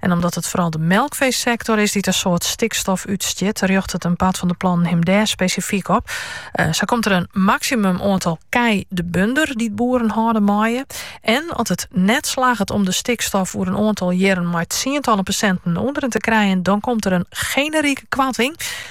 En omdat it foaral de melkfeesektor is dy't in soad stikstof útstjit, rjochtet in part fan de plannen him dêr spesifyk op. Eh, sa komt der in maksimum oantal kij de bunder dy't boeren hâlde meie. En as it net slagget om de stikstof oer in oantal jierren mei tsientallen persenten omleech te krijen, dan komt der in generike koarting.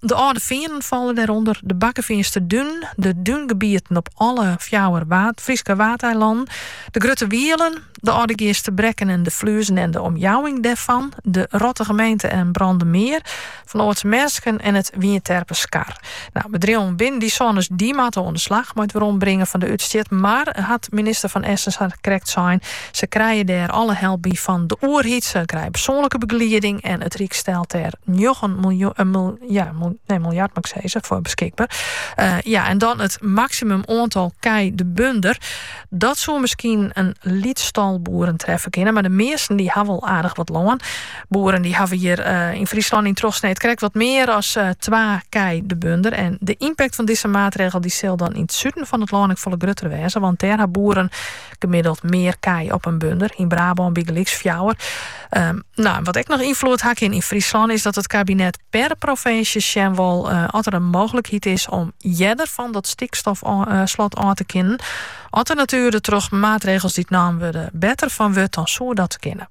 De Alde Feanen falle dêrûnder, de Bakkefeanster Dunen, de dúngebieten op alle fjouwer Fryske Waadeilannen, de Grutte Wielen, de Aldegeaster Brekken en de Fluzen en de omjouwing dêrfan, de Rottige Meente en Brandemar, Van Oordt's Mersken en it Wynjeterper Skar. Nou, bedriuwen binnen dy sones, dy moatte oan de slach mei it werombringen fan de útstjit, mar hat minister Van Essen sa krekt sein, Se krije dêr alle help by fan de oerheid. Se krije persoanlike begelieding en it Ryk stelt dêr njoggen miljard foar beskikber. Ja, en dan it maksimum oantal kij de bunder. Dat soe miskien in lyts tal boeren treffe kinne, mar de measten dy hawwe al aardich wat lân. Boeren dy hawwe hjir yn Fryslân yn trochsneed krekt wat mear as twa kij de bunder. En de ympakt fan dizze maatregel sil dan yn it suden fan it lân ek folle grutter wêze, want dêr ha boeren gemiddeld mear kij op in bunder, yn Brabân bygelyks fjouwer. Ehm, nou, wat ek noch ynfloed ha kin yn Fryslân is dat it kabinet per provinsje sjen wol eh, oft er in mooglikheid is om earder fan dat stikstofslot eh, ôf te kinnen. Oft de natuer troch maatregels die nommen wurde better fan wurdt, dan soe dat kinne.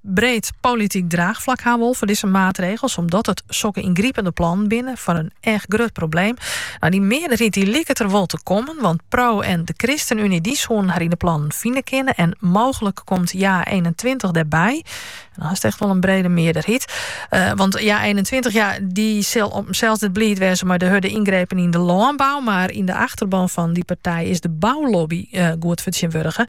breed polityk draachflak ha wol foar dizze maatregels, omdat it sokke yngripende plannen binne foar in echt grut probleem. No dy mearderheid dy liket der wol te kommen, want Pro en de Christenunie dy soenen harren yn de plannen fine kinne en mooglik komt Ja eenentweintich dêrby. En dan hast echt wol in brede mearderheid. Eh, want Ja eenentweintich ja, dy sil op himsels net bliid wêze mei de hurde yngrepen yn de lânbou, mar yn de achterban fan dy partij is de boulobby eh, goed fertsjinwurdige.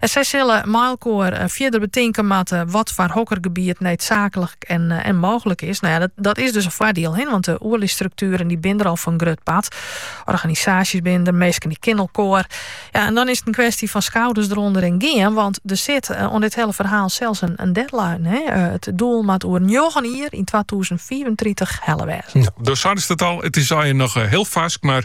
Sy sille mei elkoar fierder betinke moatte wat foar hokker gebiet needsaaklik en mooglik is. Nou ja, dat, dat is dus in foardiel, he, want de oerly strukturen die binnen er al voor een grut part. Organisaties binnen er, mensen die kennen elkoar. Ja, en dan is het een kwestie van schouders eronder en gaan, want er zit aan eh, dit hele verhaal zelfs een, een deadline. He. Eh, het doel moet over 9 jaar in 2034 helle wezen. Ja, door het al, het is al nog eh, heel vast, maar